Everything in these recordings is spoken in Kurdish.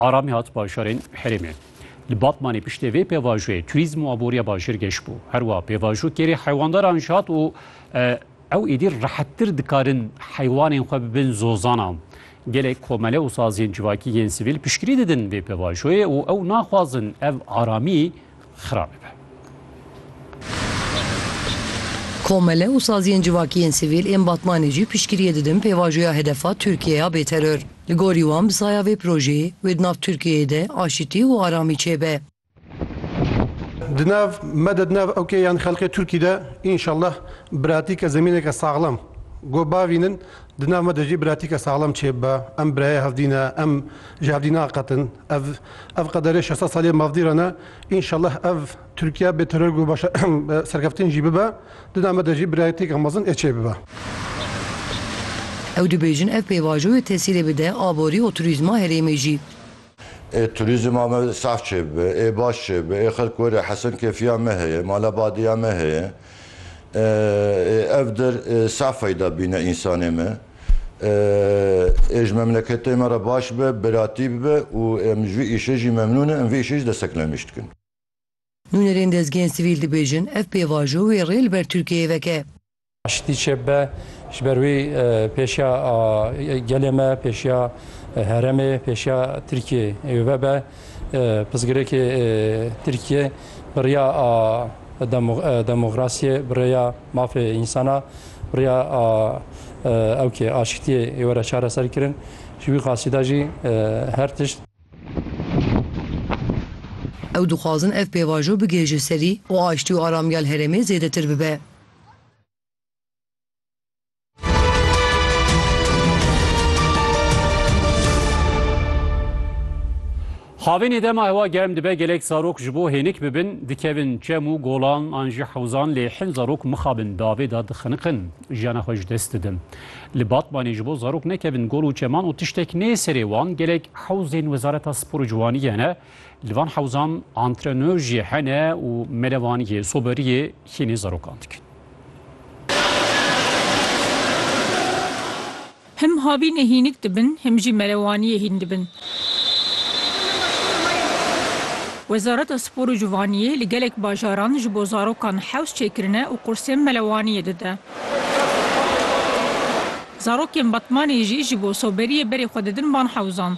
Aramî hat bajarên herêmê. Li Batmanê piştê vê pêvajoyê turîzm û aboriya bajêr geş bû. Her wiha pêvajo kêrê heywandaran jî hat û ew êdî rehettir dikarin heywanên xwe bibin zozanan. Gelek komele û saziyên civakî yên sivîl piştgirî didin vê pêvajoyê û ew naxwazin ev aramî xirab dibe. Komele û saziyên civakî yên sivîl ên Batmanê jî piştgiriyê didin pêvajoya hedefa Tirkiyê ya bêteror. Li gorî wan bi saya vê projeyê wê di nav Tirkiyeyê de aşitî û aramî çêbe. Di nav me de di nav OK yan xelkê Tirkî de înşallah biratîke zemîneke saxlem go bavînin, di nav me de jî biratîke saxlem çêbibe. Em birayê hev dî ne, em ji hev dî naqetin. Ev ev qederê şeş sed salî mafdîran e. Înşellah ev Tirkiye bê teror ku baş e serkeftin jî bibe. Di dema de jî birayetîyeke mezin ê çê bibe. Ew dibêjin ev pêvajoyê tesîrê bide aborî û turîzma herêmê jî. Ê turîzma me saf çê bibe, ê baş çê bibe, ê xelk were hesin kêfiya me heye, mala badiya me heye. Ê ev dir saf feyda bîne însanê me. Ê ji memleketê me re baş be, biratî bibe û em ji vî îşê jî memnûn in, em vê îşê jî destek nemîş dikin. Nûnerên dezgehên sivîl dibêjin, ev pêvajo wê rê li ber Tirkiyeyê veke. Aştî çêbibe, ji ber wî pêşiya gelê me, pêşiya heremê, pêşiya Tirkiyeyê wê be. Pirsgirêkê Tirkiye bi riya. Demokrasiyê, bi rêya mafê însan a, bi rêya ewkê aşitiyê ê were çareser kirin. Ji wî qasî de jî her tişt. Ew dixwazin ev pêvajo bigihêje serî û aştî û aramîya li herêmê zêdetir bibe. Xavênê dema hewa germ dibe gelek zarok ji bo hênik bibin dikevin çem û golan an jî hewzan lê hin zarok mixabin davê de dixiniqin jiyana xwe ji dest didin. Li Batmanê ji bo zarok nekevin gol û çeman û tiştek nê serê wan gelek hewzên Wezareta Spor û Ciwaniyê ne Li van hewzan antrenör jî hene û melevaniyê, soberiyê hînî zarokan dikin. Him havînê hînik dibin, him jî melewaniyê hîn dibin. Wezareta Spor û Civaniyê li gelek bajaran ji bo zarokan hewz çêkirine û qursên melewaniyê dide. Zarokên Batmanê jî ji bo soberiyê berê xwe didin van hewzan.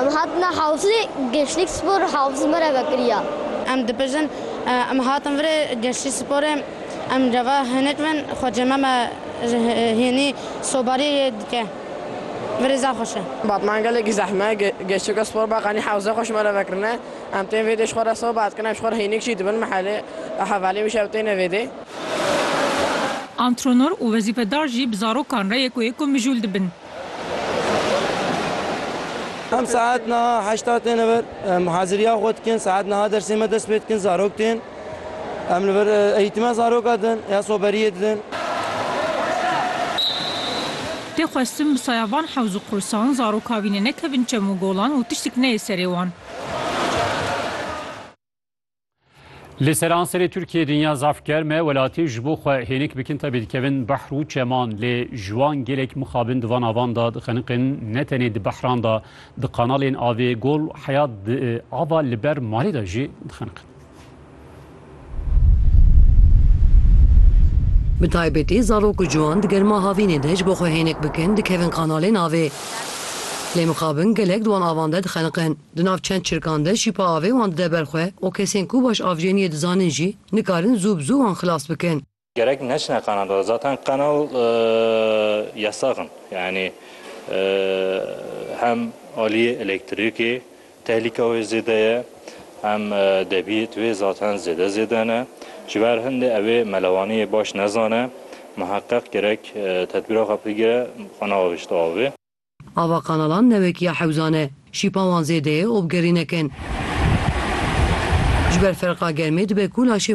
Em hatine Hewsê, Gençlik Spor Hewsê me re vekiriya. Em dibêjin, Em hatin virê Gençlik Sporê, em re ve hinek bin, xwecê me me ji hênî sobarî dike. Virê zaf xweş e. Batman gelekî zehme, Gençlik Spor Beqanî Hewsê xweş me re vekirine. Em tên vêdê ji xwe re soba dikin, em ji xwe re hênik jî dibin, mehelê hevalê wî şev têne vêdê. Antrenor û wezîfedar jî bi zarokan re yek û yek û mijûl dibin. Em saet niha heşta têne vir. Em haziriya xwe dikin. Saet niha dersê me dest pê dikin. Zarok tên. Em li vir eğîtime zaroka din ya soberiyê didin. Tê xwestin bi saya van hewz û qursan zaroka vî ne nekevin çem û golan û tiştik neyê serê wan. Li seranserê Tirkiyê dinya zaf germ e, welatî ji bo xwe hênik bikin tevî dikevin behr û çeman lê ji wan gelek mixabin di van avan de dixeniqin ne tenê di behran de di kanalên avê Gol Heyat ava li ber malê de jî dixeniqin. Bi taybetî zarok û ciwan di germa havînê de ji bo xwe hênik bikin dikevin kanalên avê lê mixabin gelek di wan avan de dixeniqin. Di nav çend çirkan de şîpa avê wan dide ber xwe û kesên ku baş avjêniyê dizanin jî nikarin zû bi zû wan xilas bikin. Gerek neçine qana dor zaten qanal yasax in yanî hem aliyê elektrîkê tehlîka wê zêde ye hem debiyêt wê zaten zêde zêde ne ji ber hindê ew ê melewaniyê baş nezane miheqeq gerek tedbîra xwe bigire xwe neavêjte avê. Ava kanalan ne wek ya hewzan e. Şîpa wan zêde ye û bi gerînek in. Ji ber ferqa germê dibe ku laşê